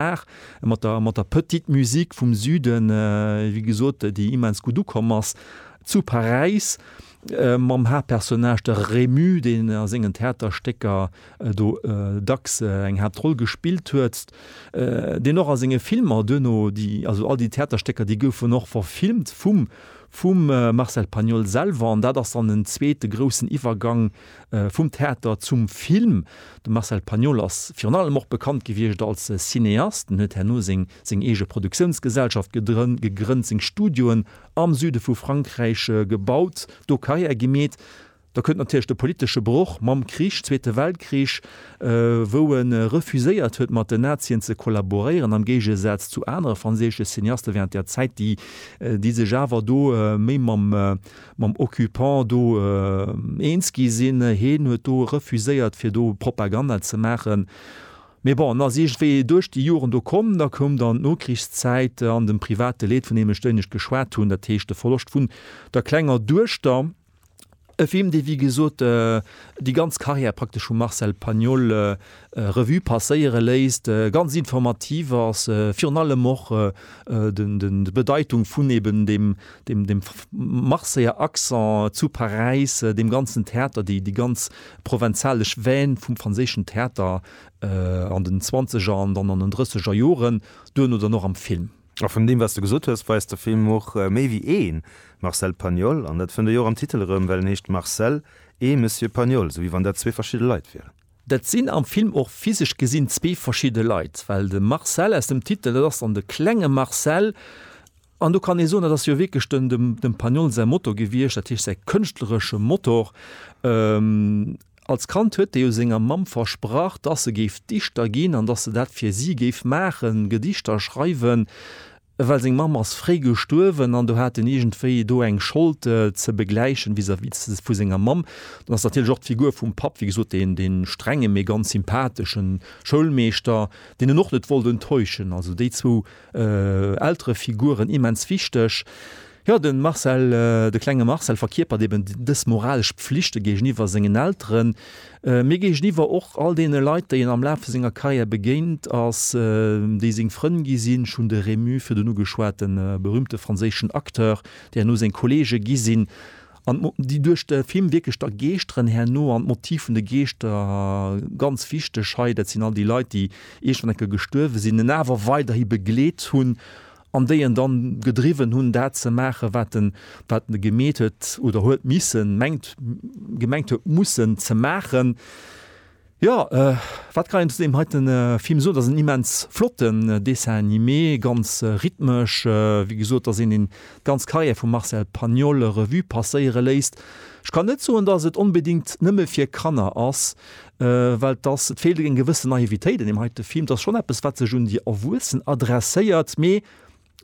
Art mat der, mat der Petite Musique vum Süden, wéi gesot, déi immens gutt ukomm ass zu Paräis, mam Haaptpersonnage, de Rému, deen a sengen Theaterstécker do dacks eng Haaptroll gespillt huet, deen och a senge Filmer duerno déi, also all déi Theaterstécker, déi goufen och verfilmt vum, vum Marcel Pagnol selwer. An dat ass dann en zweete groussen Iwwergang Vum Theater zum Film, De Marcel Pagnol ass virun allem och bekannt gewiescht als Cineast. En huet herno seng eege Produktiounsgesellschaft gegrënnt, seng Studioen am Süde vu Frankräich gebaut, do Karriär gemeet. Da kënnt natierlech de politesche Broch mam Krich, Zweete Weltkrich, wou e refuséiert huet, mat den Nazien ze kollaboréieren, am Géigesaz zu anere franséische Cineaste wärend där Zäit, déi sech awer do méi mam. mam Occupant do eens gi sinn. Heen huet do refuséiert fir do Propaganda ze maachen. Mee bon, en ass iergendwéi duerch déi Joren do komm. Da koum dann d'Nokrichszäit an de private Leed, vun deem ech duerno geschwat hunn, dat heescht de Verloscht vun der klenger Duechter, e Film, dee wéi gesot déi ganz Karriär praktesch vum Marcel Pagnol Revue passéiere léisst, ganz informativ ass, virun allem och d'Bedeitung vun eben dem Marseiller Accent zu Paräis, deem ganzen Theater, déi ganz provenzalesch Veine vum franséischen Theater an den zwanzeger an dann an den drësseger Joren, duerno dann och am Film. A vun deem, wat s de gesot hues, weist de Film och méi wéi ee Marcel Pagnol. An dat fënnt ee jo och am Titel erëm, well en heescht Marcel et Monsieur Pagnol, esou wéi wann dat zwee verschidde Leit wieren. Dat sinn am Film och physesch gesinn zwee verschidde Leit, well de Marcel aus dem Titel, dat ass dann de klenge Marcel. An do kann ee soen, dat ass jo wierklech dem, dem Pagnol säi Motor gewiescht, dat heescht säi kënschtleresche Motor. Als Kand huet e jo senger Mamm versprach, dass e géif Dichter ginn an dass e dat fir si géif maachen, Gedichter schreiwen. well seng Mamm ass fréi gestuerwen an do hat en iergendwéi do eng Schold ze begläichen vis-à-vis vu senger Mamm. Dann ass natierlech och d'Figur vum Papp, wéi gesot, deen, deen strengen, mee ganz sympatheschen Schoulmeeschter, deen en och net wollt enttäuschen. Also déi zwou Elterefiguren, immens wichteg. Jo, de Marcel, de klenge Marcel verkierpert eben dës moralesch Pflichte géigeniwwer sengen Elteren, mee géigeniwwer och all deene Leit, déi en am Laf vu senger Karriär begéint ass, déi seng Frënn gi sinn. Ech hunn de Rému virdun ugeschwat, de berüümte franséischen Acteur, déi herno seng Kolleege gi sinn an déi duerch de Film wierklech da geeschteren herno. An d'Motiv vun de Geeschter, ganz wichteg hei, dat sinn all déi Leit, déi iergendwann eng Kéier gestuerwe sinn, en awer weiderhi begleet hunn an déi en dann gedriwwen hunn dat ze maachen, wat en, wat en gemeet huet oder huet missen, mengt, gemengt huet mussen ze maachen. Jo, wat kann een zu deem heiten Film soen? Et ass en immens flotten Dessin animé, ganz rhythmesch, wéi gesot, dass een déi ganz Carrière vum Marcel Pagnol Revue passéiere léisst. Ech kann net soen, dass et onbedéngt nëmme fir Kanner ass. well et ass, et feelt eng gewësse Naivitéit an deem heite Film. Et ass schonn eppes, wat sech un déi Erwuessen adresséiert, mee,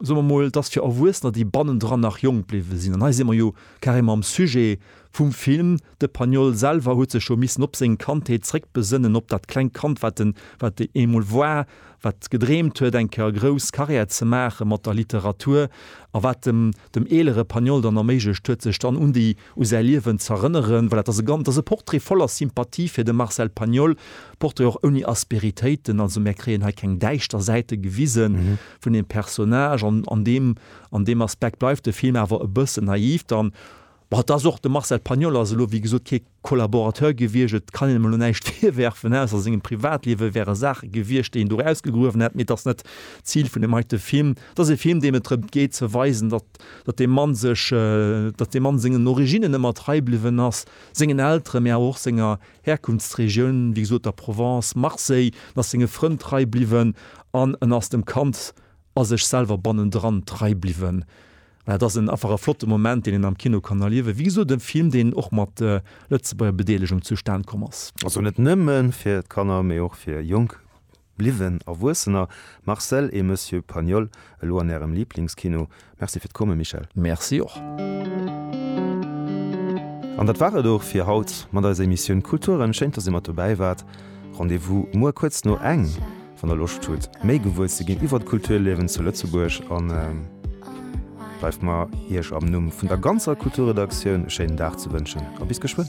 soe mer mol, et ass fir Erwuessener, déi bannendran nach jonk bliwwe sinn. An hei si mer jo carrément am Sujet vum Film. De Pagnol selwer huet sech jo missen op seng Kandheet zréckbesënnen, op dat klengt Kand, wat en, wat e eemol war, wat gedreemt huet, eng Kéier grouss Carrière ze maache mat der Literatur a wat dem, dem eelere Pagnol dann erméiglecht huet, sech dann un déi u säi Liewen z'erënneren, well dat ass e gan-, dat ass e Portrait voller Sympathie fir de Marcel Pagnol, Portrait och ouni Asperitéiten, also mär kréien hei keng däischter Säite gewisen vun deem Personnage an an deem, an deem Aspekt bleift de Film awer e bëssen naiv dann. Bon, et ass och, de Marcel Pagnol ass elo wéi gesot kee Collaborateur gewiescht, et kann een ëm elo näischt virwerfen, ne, also a sengem Privatliewe wäre Saache gewiescht, déi een do erausgegruewen hätt, mee et ass net d'Zil vun deem heite Film. Et ass e Film, deem et drëmt geet ze weisen, datt. datt dee Mann sech, datt dee Mann sengen Originnen ëmmer trei bliwwen ass, sengen Elteren, mä awer och senger Herkunftsregioun, wéi gesot der Provence, Marseille, en ass senge Frënn trei bliwwen an en ass dem Kand a sech selwer bannendran trei bliwwen. Voilà, dat ass en einfach e flotte Moment, deen een am Kino kann erliewen. Wéi gesot, e Film, deen och mat Lëtzebuerger Bedeelegung zustan komm ass. Also net nëmme fir d'Kanner, mee och fir jonk. Bliwwen Erwuessener, Marcel et Monsieur Pagnol, elo an Ärem Lieblingskino. Merci fir d'Komme, Michel. Merci och. An dat war et och fir haut mat eiser Emissioun Kulturen. Schéin, dass Dir mat dobäi waart. Rendez-vous muer kuerz no eng, wann Der Loscht hutt, méi gewuer ze ginn iwwert d'Kulturliewen zu Lëtzebuerg. An bleift mer, Iech am Numm vun der ganzer Kulturredaktioun e schéinen Dag ze wënschen a bis geschwënn.